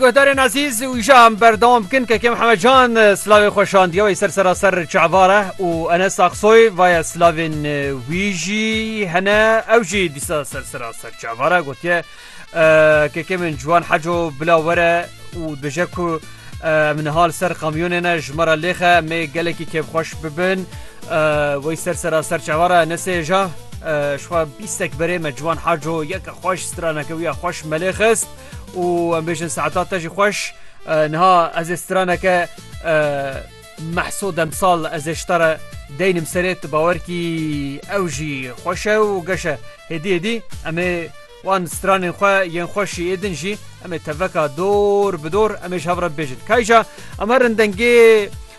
Guhdarên ezîz û îşa em berdewam bikin Keke Mihemed Can silavê xwe şandiye wey ser sera ser çavare û Enes Aksoy vaye silavên wî jî hene ew jî dîsa ser sera ser çavare gotiye Keke min ciwan heco bila were û dije ku em niha li ser kamyonê ne ji me re lêxe em ê gelekî kêfxweş bibin wey ser sera ser çavare Enesê ja ji xwe bîstek berê me ciwan heco yeke xweş straneke wî ya xweş me lê xist. û em bêjin saeta te jî xweş niha ez ê straneke mehso demsal ez ê ji te re deynim serê tu bawer kî ew jî xweş e û geş e hêdî hêdî em ê wan stranên xwe yên xweş jî ê din jî em ê teveka dor bi dor em ê ji hev re bêjin kayja em herin dengê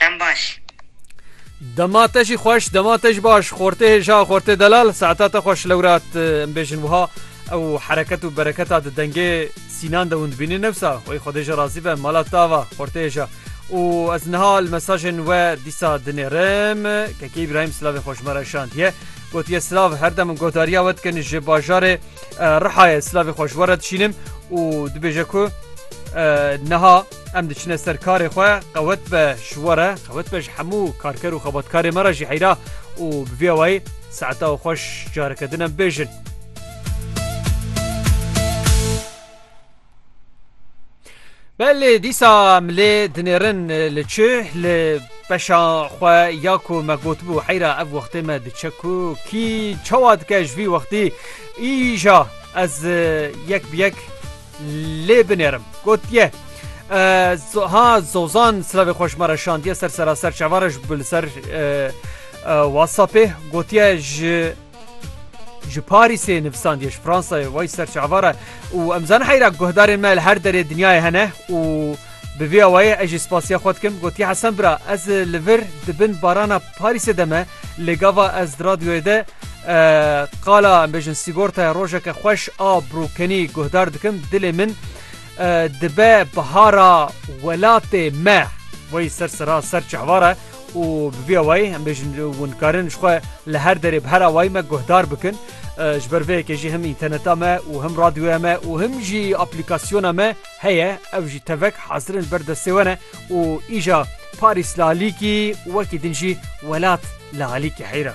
Dem baş. Dema te jî xweş, dema te jî baş, xortê hêja, xortê delal, saeta te xweş lewrat em bêjin wiha ew hereket û bereketa di dengê Sînan de hûn dibînin nefsa wê Xwedê ji razî be mala te ava xortê hêja û ez niha li mesajên we dîsa dinêrim Kekê Îbrahîm silavê xwe ji me re şandiye gotiye silav her dem godariya we dikin ji bajarê Rihayê silavê xwe ji we re dişînim û dibêje ku niha Em diçine ser karê xwe qewet be ji we re qewet be ji hemû karker û xebatkarê me re jî heyra û bi vî awayî saeta û xweş careke din em bêjin. Belê dîsa em lê dinêrin li çi li beşa xwe ya ku me gotibû heyra ev wextê me diçe ku kî çawa dike ji vî wextî îja ez yek bi yek lê binêrim. Gotiye ha Zozan silavê xwe ji me re şandiye ser seraser çavan re ji li ser WhatsAppê gotiye ji ji Parîsê nivisandiye ji Fransayê wey ser çavan re û em zan heyra guhdarên me li her derê dinyayê hene û Bi vî awayê ez jî spasiya xwe dikim. Gotiye Hesen bira ez li vir di bin barana Parîsê de me lê gava ez di radyoyê de qala em bêjin sîgortaya rojeke xweş a brokenî guhdar dikim dilê min dibe bihara welatê me wey ser sira ser çehvara û bi vî awayê em bêjin hûn karin ji xwe li her derê bi her awayî me guhdar bikin. Ji ber vê yekê jî him înterneta me û him radyoya me û him jî aplîkasyona me Heye ev jî tevek hazir in ber destê we ne û îja Parîs li alîkî wekî din jî welat li alîkî heyr e.